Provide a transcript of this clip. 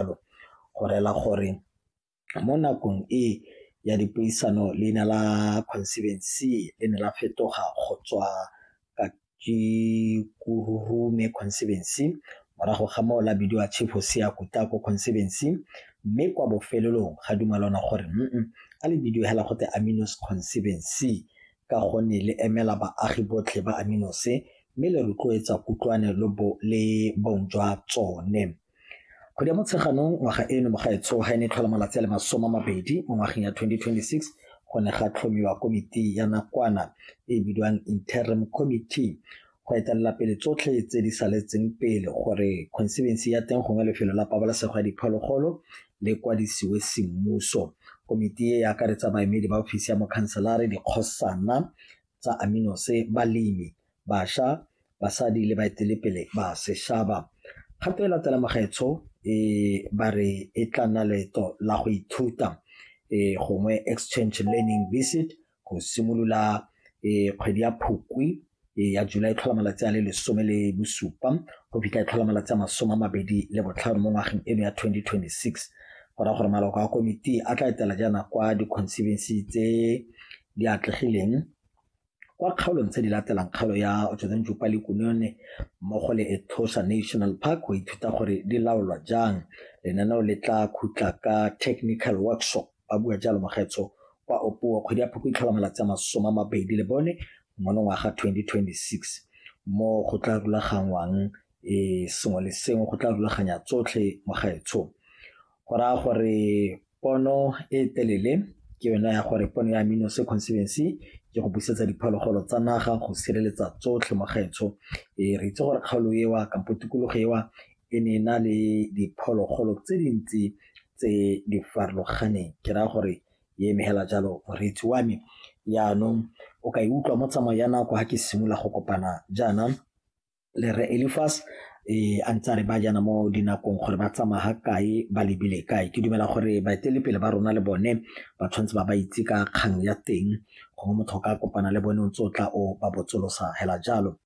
jalo go rela gore mo nakong e ya dipuisano leina la conservancy le ne la fetoga go tswa ka Kururume conservancy morago ga moo la bidiwa Chief Hosea Kutako conservancy mme kwa bofelelong ga dumalana gore a le bidiwe hela go te Aminos conservancy ka gonne le emela baagi botlhe ba Aminose mme le rotloetsa kutlwane le bong jwa tsone Kgwedi ya Motsheganong ngwaga eno mo gaetsho ga e ne tlhola malatsi a le masome a mabedi mo ngwageng ya 2026 go ne ga tlhomiwa komiti ya nakwana e e bidiwang Interim Committee go etelela pele tsotlhe tse di saletseng pele gore conservancy ya teng gongwe lefelo la pabalesego ya diphologolo le kwadisiwe semmuso. Komiti e e akaretsa baemedi ba ofisi ya mokhanselare, dikgosana tsa Aminose, balemi, basha, basadi le baetelepele ba seshaba. Kgato e latela magaetsho e ba re e tla nna leeto la go ithuta gongwe exchange learning visit go simolola kgwedi ya Phukwi ya July e tlhola malatsi a le lesome le bosupa go fitlha e tlhola malatsi a masome a mabedi le botlhano mo ngwageng eno ya 2026 go raya gore maloko a komiti a tla etela jaana kwa di-conservancy tse di atlegileng kwa kgaolong tse di latelang kgaolo ya Otshozentju Palikunone mmogo le Etosha National Park go ithuta gore di laolwa jang. Lenaneo le tla khutla ka technical workshop, ba bua jalo Mogetso kwa Opuwo kgwedi ya Phukwi e tlhola malatsi a masome a mabedi le bone monongwaga 2026 mo go tla rulaganngwang e sengwe le sengwe go tla rulaganya tsotlhe Mogetso. Go raya gore pono e telele ke yone ya gore pono ya amino sequencebency ke go busetsa diphologolo tsa naga go sireletsa tsotlhe mo gaetsho e re itse gore kgaolo ewa kampo tikologo ewa e ne e na le diphologolo tse dintsi tse di farologaneng ke raya gore e emegela jalo moreetsi wa me jaanong o ka e utlwa mo tsamao ya nako ga ke simolola go kopana jaana le re Elifas e a ntse a re ba jana mo dinakong gore ba tsamaya ga kae ba lebile kae ke dumela gore baetelepele ba rona le bone ba tshwanetse ba ba itse ka kgang ya teng gongwe motho ka kopana le bone o ntse o tla o ba botsolosa hela jalo